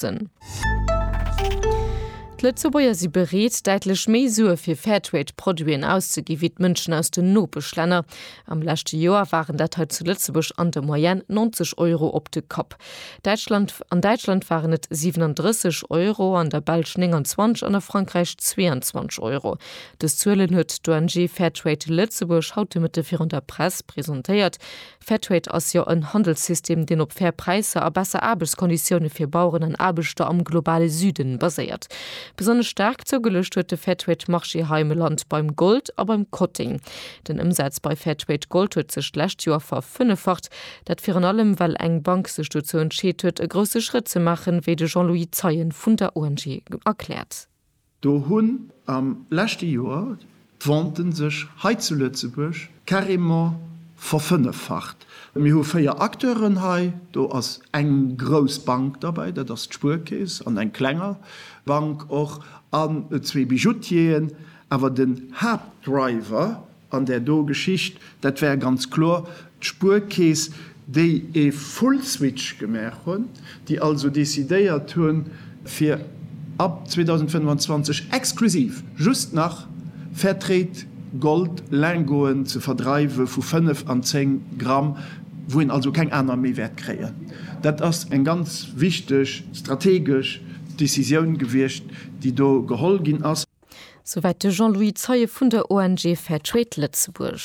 Produzenten. D'Lëtzebuerger si bereet, däitlech méi Sue fir Fairtrade-Produiten auszegi wéi d'Mënschen aus den Nopeschlänner. Am leschte Joer waren dat hei zu Lëtzebuerg an der Moyenne 90 Euro op de Kapp. Däitschland, An Däitschland waren et 37 Euro, an der Belsch 29 an a Frankräich 22 Euro. Dës Zuelen huet d'ONG Fairtrade Lëtzebuerg haut de Mëtte virun der Press presentéiert. Fairtrade ass jo en Handelssystem, deen op fair Präisser a besser Aarbechtskonditioune fir Baueren an Aarbechter am globale Süden baséiert. Besonnesch staark zougeluecht huet de Fairtrade Marché hei am Land beim Gold a beim Kotting. Den Ëmsaz bei Fairtrade Gold huet sech d'lescht Joer verfënneffacht. Dat virun allem well eng Bank sech dozou entscheet huet e grousse Schrëtt ze maachen, wéi de Jean-Louis Zeien vun der ONG erkläert. Do hunn am leschte Joer d'Venten sech hei zu Lëtzebuerg carrément verfënneffacht. Mir hu véier Acteuren hei, do ass eng grouss Bank derbäi, dat ass d'Spuerkeess, an eng klenger Bank och, an zwee Bijoutieren. Awer den Haaptdriver An där do Geschicht, dat war ganz kloer d'Spuerkeess, déi e Full-Switch gemaach hunn, déi also decidéiert hu fir ab 2025 exklusiv just nach Fairtrade Gold Lingoten ze verdreiwe vu 5 an 10 Gramm, wou een also keng aner méi wäert kréien. Dat ass eng ganz wichteg strategesch Decisioun gewiescht, déi do geholl ginn ass. Souwäit de Jean-Louis Zeie vun der ONG Fair Trade Lëtzebuerg.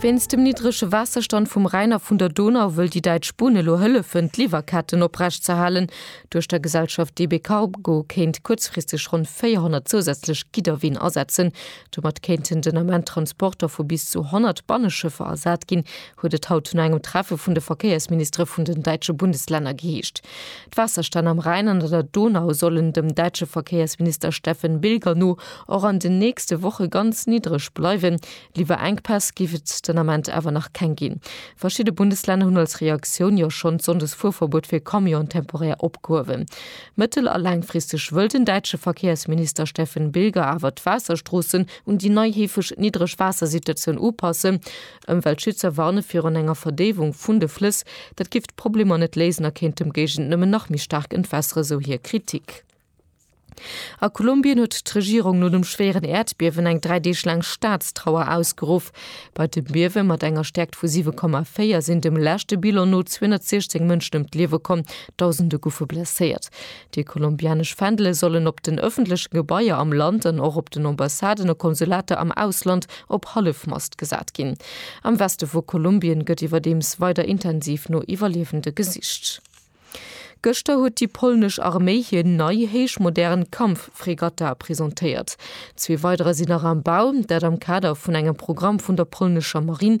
Wéinst dem niddrege Waasserstand vum Rhäin a vun der Donau wëll déi däitsch Bunn elo hëllefen, d'Liwwerketten oprecht ze halen. Duerch der Gesellschaft DB Cargo kéint kuerzfristeg ronn 400 zousätzlech Gidderween asetzen. Domat kéinten den Ament Transporter vu bis zu 100 Banneschëffer ersat ginn, huet et haut no engem Treffe vun de Verkéiersministere vun den däitsche Bundeslänner geheescht. D'Waasserstänn am Rhäin an an der Donau sollen dem däitsche Verkéiersminister Steffen Bilger no och an den nächste Woche ganz niddreg bleiwen. Liwwerenkpäss géif et den Ament awer nach keng ginn. Verschidde Bundeslänner hunn als Reaktioun jo schonn d'Sonndesfuerverbuet fir Camionen temporär opgehuewen. Mëttel a laangfristeg wëll den däitsche Verkéiersminister Steffen Bilger awer d'Waasserstroossen un déi nei heefeg niddreg Waassersituatioun upassen. Ëmweltschützer warne virun enger Verdéiwung vun de Flëss. Dat giff d'Problemer net léisen a kéint dem Géigend nëmmen nach méi staark entwässeren, sou hir Kritik. A Kolumbien huet d'Regierung no dem schwéieren Äerdbiewen eng dräi Deeg laang Staatstrauer ausgeruff. Bei dem Biewe mat enger Stäerkt vu 7,4 sinn dem leschte Bilan no 216 Mënschen ëm d'Liewe komm, Dausende goufe blesséiert. Déi kolumbianesch Fändele sollen op den ëffentleche Gebaier am Land an och op den Ambassaden a Konsulater am Ausland op Hallefmast gesat ginn. Am Weste vu Kolumbien gëtt iwwerdeems weider intensiv no Iwwerliewende gesicht. Gëschter huet déi polnesch Arméi hir nei, héich modern Kampffregata presentéiert. Zwee weiderer sinn nach am Bau, dat am Kader vun engem Programm vun der polnescher Marinn.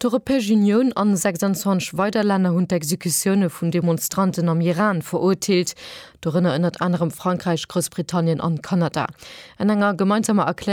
D'Europäesch Unioun an 26 weider Länner hunn d'Exekutioune vun Demonstranten am Iran verurteelt, dorënner ënnert anerem Frankräich, Groussbritannien an Kanada. An enger gemeinsamer Erklärung,